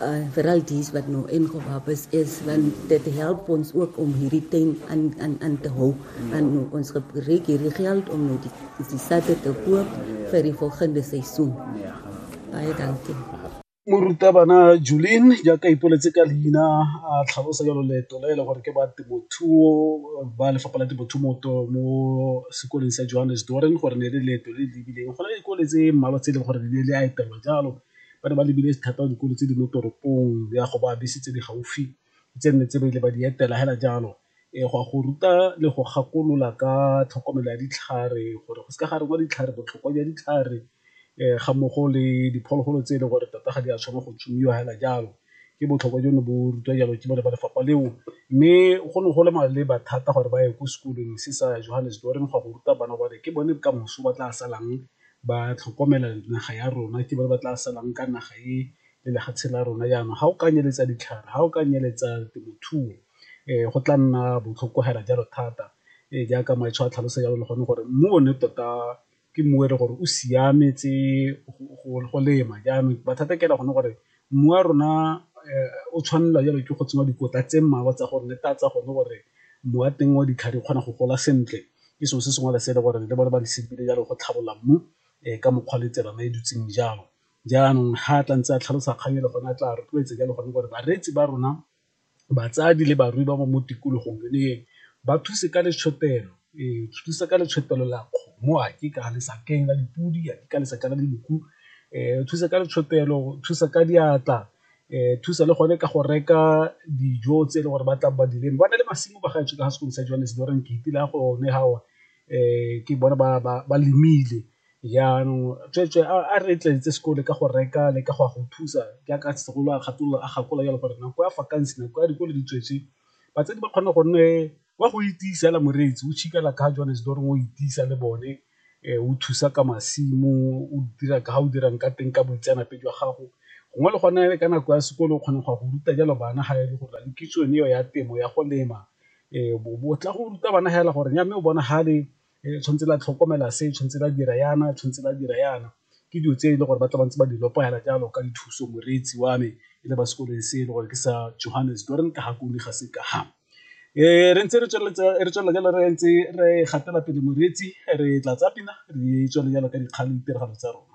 uh, veral dies wat nou ingewap is is want dit help ons ook om hierdie tent aan aan aan te hou ja. en nou, ons gebruik hierdie geld om nou die die sakke te koop vir die volgende seisoen. Ja. Baie dankie. Morutabana Julien ja ka ipoletse ka leina a tlhalosa jalo leeto le le gore ke ba temothuo ba lefapha la temothuo mo sekoleng sa Johannes Doren gore ne le leeto le le lebileng go na le dikole tse mmalwa tse e leng gore le le a etelwa jalo ba ne ba lebile thata dikolo tse di mo toropong le ya go ba bese tse di gaufi tse nne tse ba ile ba di etela fela jalo e go a go ruta le go gakolola ka tlhokomelo ya ditlhare gore go se ka ga rengwa ditlhare botlhokwa jwa ditlhare ga mmogo le diphologolo tse e leng gore tota ga di a tshwanna go tsomiwa fela jalo ke botlhokwa jo ne bo rutwa jalo ke bone ba lefapha leo. Mme go ne go le maleba thata gore ba ye ko sekolong se sa Johannesburg go ya go ruta bana gore ke bone kamoso ba tla salang ba tlhokomela naga ya rona ke ba ba tla salang ka naga e le lefatshe la rona jaanong ga o ka nyeletsa ditlhare, ga o ka nyeletsa temothuo go tla nna botlhoko fela jalo thata jaaka Maetsho a tlhalosa jalo le gone gore mmu o ne tota ke mmu e le gore o siametse go lema jaanong mathata ke gone gore Mmu wa rona o tshwanelwa jalo ke go tsenngwa dikotla tse mmalwa tsa gore netefatsa gone gore mmu wa teng wa ditlhare o kgona go gola sentle ke selo se sengwe le se e le gore le bone ba lebile jalo go tlhabolola mmu ka mokgwa le tsela e dutseng jalo. Jaanong ga tla ntse a tlhalosa kgang e le gone a tla rotloetsa jalo gone gore bareetsi ba rona batsadi le barui ba ba mo tikologong le eng ba thuse ka letshotel,o ee thusa ka letshotel la kgomo a ke ka lesakeng la dipodi, a ke ka lesaka la dinku thusa ka letshotel, thusa ka diatla thusa le gone ka go reka dijo tse e le gore ba tla ba dilemo ba na le masimo ba gaetsho ka fa sekolong sa Johannesburg ke itse le ya go ne fa ke bone ba lemile. Jaanong tsweetswe a re tletse sekole ka go reka le ka go a go thusa jaaka segolo a kgatolola a gakola jalo gore nako ya vacancy nako ya dikolo di tswetswe batsadi ba kgone go nne wa go itisa la moreetsi o tšhikela ka Johannesburg o itisa le bone o thusa ka masimo o dira ka ga o dirang ka teng ka boitseanape jwa gago gongwe le gone ka nako ya sekolo o kgona go ya go ruta jalo bana ga e le gore le kitso eo ya temo ya go lema o tla go ruta bana fela gore ya mme o bonagale le tshwanetse la tlhokomela se, tshwanetse la dira yana, tshwanetse la dira yana. Ke dilo tse e le gore ba tla ba ntse ba di lopela jalo ka dithuso moreetsi wa me e le ba sekolong se e le gore ke sa Johannes Doorn ka gakolola ga se ka ga. Re ntse re tswelela jalo re ntse re gatela pele moreetsi re tla tsaya pina re tswelele jalo ka dikgang le ditiragalo tsa rona.